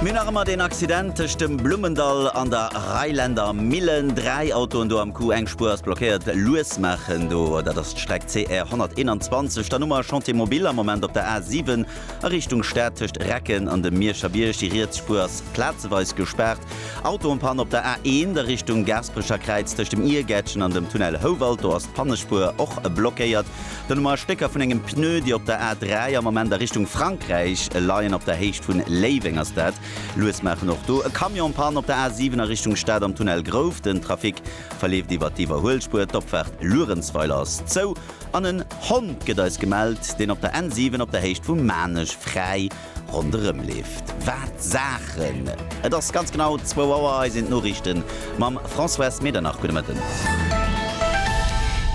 Mir hunn nach ëmmer deen Accident tëscht dem Blummendall an der Reiländer Millen. Dräi Autoen do am Coup, eng Spuer ass blockéiert. Lues maachen do, dat ass d'Streck CR 121. Dann hu mer e Chantier mobile am Moment op der A 7 a Richtung Stad tëscht Recken an dem Mierscher Bierg. Déi riets Spuer ass plazeweis gespaart. Autoenpann op der A 1 a Richtung Gaasperecher Kräiz tëscht dem Iergäertchen an dem Tunnel Houwald. Do ass d'Pannespuer och blockéiert. Donommer Stécker vun engem Pneu, déi op der A3 am Moment a Richtung Frankräich leien. Op der Héicht vun Léiweng ass dat lues maachen. Och do e Camion Panne op der A7 a Richtung Stad am Tunnel Grouf. Den Trafic verleeft iwwer d'Iwwerhuelspuer. D'Opfaart Luerenzweiler ass zou an en Hond gëtt eis gemellt, deen op der N7 op der Héicht vu Maarnech fräi ronderëm leeft. Wat Saachen! Et ass ganz genau zwou Auer, hei sinn d'Noriichte mam Françoise Medernach. Gudde Mëtten.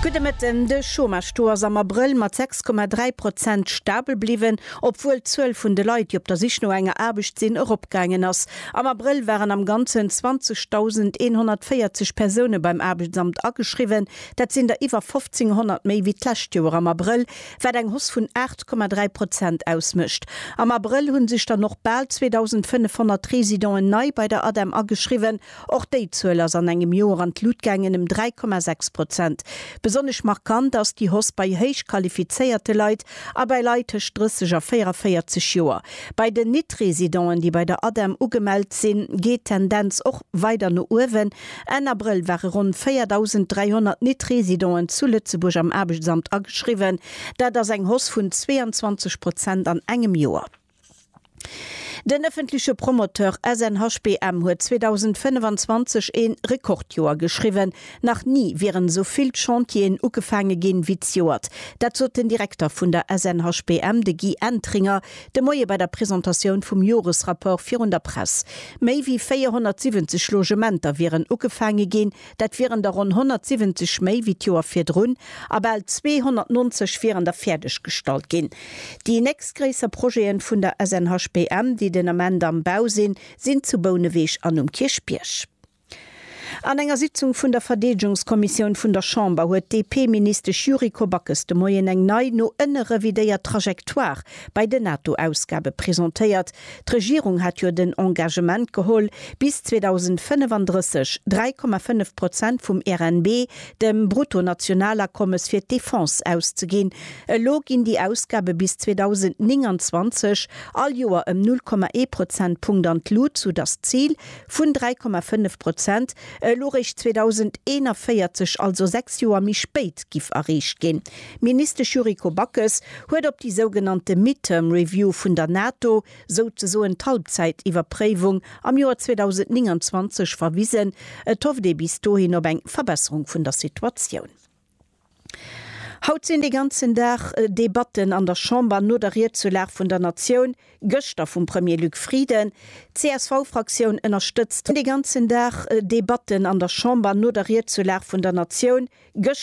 Gudde Mëtten. De Chômage-Taux ass am Abrëll mat 6,3 Prozent stabel bliwwen, obwuel d'Zuel vun de Leit, déi op der Sich no enger Aarbecht sinn, eropgaangen ass. Am Abrëll waren am Ganzen 20.140 Persoune beim Aarbechtsamt ageschriwwen. Dat sinn der iwwer 1.500 méi wéi d'lescht Joer am Abrëll. wat eng Hausse vun 8,3 Prozent ausmécht. Am Abrëll hu sech dann och bal 2.500 Residenten nei bei der ADEM ageschriwwen. Och déi Zuel ass an engem Joer an d'Lut gaangen, ëm 3,6 Prozent. Besonnesch markant ass déi Hausse bei héich qualifizéierte Leit a bei Leit tëscht 30 a 44 Joer. Bei den Nit-Residenten, déi bei der ADEM ugemellt sinn, geet d'Tendenz och weider no uewen. Enn Abrëll ware ronn 4.300 Net-Residenten zu Lëtzebuerg am Aarbechtsamt ageschriwwen. Dat ass eng Hausse vun 22 Prozent an engem Joer. Den ëffentleche Promoteur SNHBM huet 2025 ee Rekordjoer geschriwwen. Nach ni wieren esou vill Chantieren ugefaange ginn, wéi d'Joert. Dat sot den Direkter vun der SNHBM, de Guy Entringer, De Moie bei der Presentatioun vum Joresrapport virun der Press. Méi wéi 470 Logementer wieren ugefaange ginn. Dat wieren der ronn 170 méi wéi d'Joer virdrun a bal 290 wieren der fäerdeg gestallt ginn. Déi nächstgréisser Projete vun der SNHBM, déi den Ament am Bau sinn, sinn zu Bouneweg an um Kierchbierg. An enger Sitzung vun der Verdeedegungskommissioun vun der Chamber huet d'DP-Ministesch Yuriko Backes de Moien eng nei, no ënne revidéiert Trajectoire bei den NATO-Ausgabe presentéiert. D'Regierung hat jo den Engagement geholl, bis 2035 3,5 Prozent vum RNB, dem Bruttonationalakommes, fir d'Defense auszeginn. Elo ginn déi Ausgabe bis 2029 all Joer ëm 0,1 Prozentpunkt an d'Lut, soudass d'Zil Vun 3,5 Prozent elo eréischt 2041, also sechs Joer méi spéit, giff erreecht ginn. Ministesch Yuriko Backes huet op déi sougenannte Midterm Review vun der NATO, souzesoen d'Halbzäitiwwerpréiwung am Joer 2029, verwisen. Et hofft ee bis dohin op eng Verbesserung vun der Situatioun. Haut sinn dee ganzen Dag Debatten an der Chamber no der Riedzulag vun der Natioun gëschter vum Premier Luc Frieden. D'CSV-Fraktioun ënnerstëtzt dee ganzen Dag Debatten an der Chamber no der Riedzulag vun der Natioun gëschter.